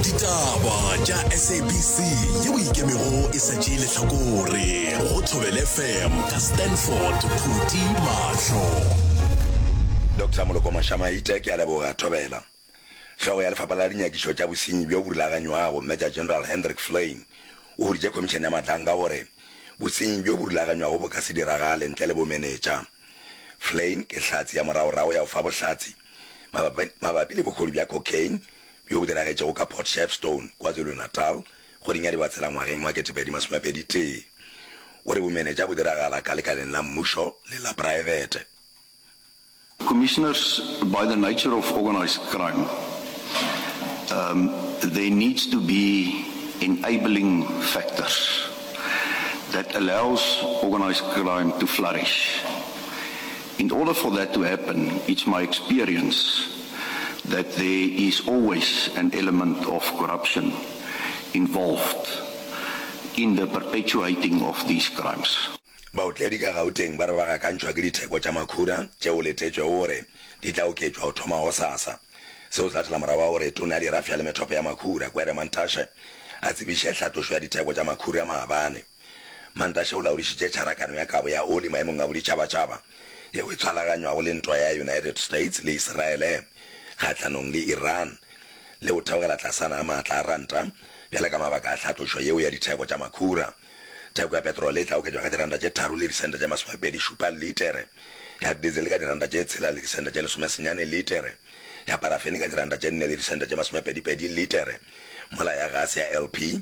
ditaba tša sabc ye o ikemego e sa tšee lehlakore go thobele fm ka stanford phuti mahlo dr moloko mošamaite ke a leboga thobela hlogo ya lefapha la dinyakišo tša bosenyi bjo bo rulaganywago major general hendrik flain o huditše khomišene ya matlang ka gore bosenyi bjo bo rulaganywago bo ka se diragale ntle le bomenetša flain ke hlatse ya moragorago ya go fa bohlatse mabapi le bohodu bja cocaine bjo bo diragetšego ka Port Shepstone, KwaZulu-Natal, kgweding ya Dibatsela ngwageng wa 2021. O re bomenetša bo diragala ka lekaleng la mmušo le la praebete. Commissioners, by the nature of organised crime, um, there needs to be enabling factors that allows organised crime to flourish. In order for that to happen, it's my experience that there is always an element of corruption involved in the perpetuating of these crimes. Baotledi ka Gauteng ba re ba gakantšhwa ke ditheko tša makhura tše go letetšwego gore di tla oketšwa go thoma gosasa. Se o tlhatela morago ga gore Tona ya Dirafša le Methopo ya Makhura, Gwere Mantashe, a tsebiše tlhatlošo ya ditheko tša makhura maabane. Mantashe o laodišitše tšharakano ya kabo ya oli Maemong a Boditšhabatšhaba yeo e tshwalaganywago le ntwa ya United States le Iseraele kgahlanong le Iran le go theogela tlasana ga maatla a ranta bjale ka mabaka a tlhatlošo yeo ya ditheko tša makhura. Theko ya petrole e tla oketšwa ka diranta tše tharo le disente tše masomepedi šupa litere, ya diesel ka diranta tše tshela le disente tše lesome senyane litere, ya parafene ka diranta tše nne le disente tše masomepedi pedi litere, mola ya gase ya LP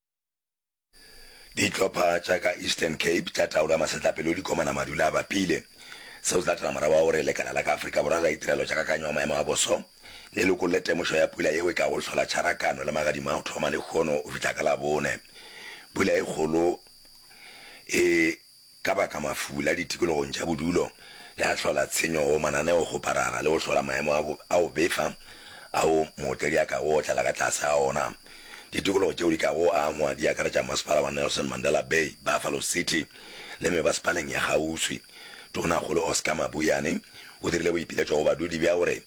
Dihlopha tša ka Eastern Cape tša taolo ya masetlapelo di komana madula a bapile. Seo se latela morago wa gore lekala la ka Afrika Borwa la Ditirelo tša Kakanyo ya Maemo a Boso le lokolle temošo ya pula yeo e ka go hlola Tšharakano le magadima a go thoma lehono go fihla ka Labone. Pula e kgolo e Ka baka mafula ditikologong tša bodulo le a hlola tshenyo go mananeo go parara le go hlola maemo a go a go befa ao mootledi a kago otlela ka tlase ga ona. Ditikologo tšeo di kago angwa di akaretša Masepala wa Nelson Mandela Bay, Buffalo City le mebasepaleng ya kgauswi. Tonakgolo Oscar Mabuyane o dirile boipiletšo go badudi bja gore,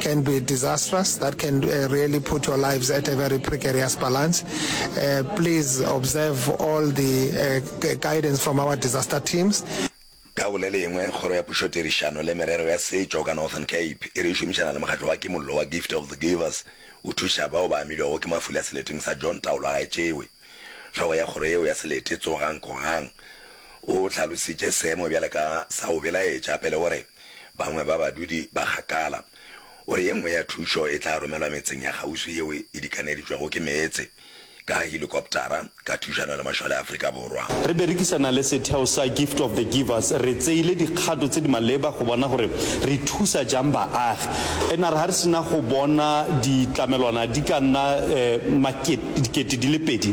can be disastrous that can uh, really put your lives at a very precarious balance. Uh, please observe all the uh, guidance from our disaster teams. ka bole lengwe kgoro ya pušotirišano le merero ya setšo ka northern cape e re e šomišana le mokgatlo wa kimollo wa gift of the givers o thuša bao ba amilwego ke mafula seleteng sa john taolo a gaetšewe tlhogo ya kgoro yeo ya selete tsogang kogang o tlhalositše seemo bjale ka sa o belaetša pele gore bangwe ba badudi ba kgakala. O re ye nngwe ya thušo e tla romelwa metseng ya kgauswi yeo e dikaneditšwego ke meetse ka helikoptara ka thušano le mašole a Afrika Borwa. Re berekisana le setheo sa Gift of the Givers, re tseile dikgato tse di maleba go bona gore re thusa jang baagi. Ena re ha re sena go bona ditlamelwana di ka nna makete dikete di le pedi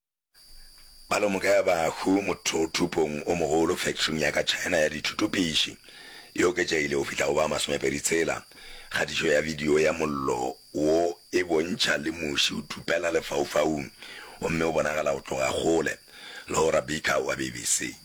Palomoka ya bahu mothothupong o mogolo fekthring ya ka China ya dithutopiši e oketšegile go fihla go ba masomepedi tshela. Kgatišo ya bidio ya mollo wo e bontšha le muši o thupela lefaufaung gomme o bonagala go tloga kgole. Laura Beaker wa BBC.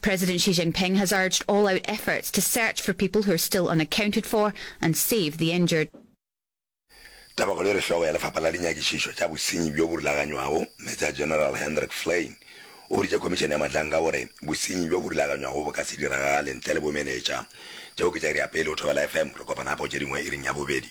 President Xi Jinping has urged all-out efforts to search for people who are still unaccounted for and save the injured. Tabakgolo e re hlogo ya Lefapha la Dinyakišišo tša Bosenyi bjo bo Rulaganywago, Major General Hendrik Flein, o boditše Khomišene ya Matlanka gore bosenyi bjo bo rulaganywago bo ka se diragale ntle le bomenetša. Tšeo ke tša iri ya pele go Thobela FM. Re kopana gape go tše dingwe iring ya bobedi.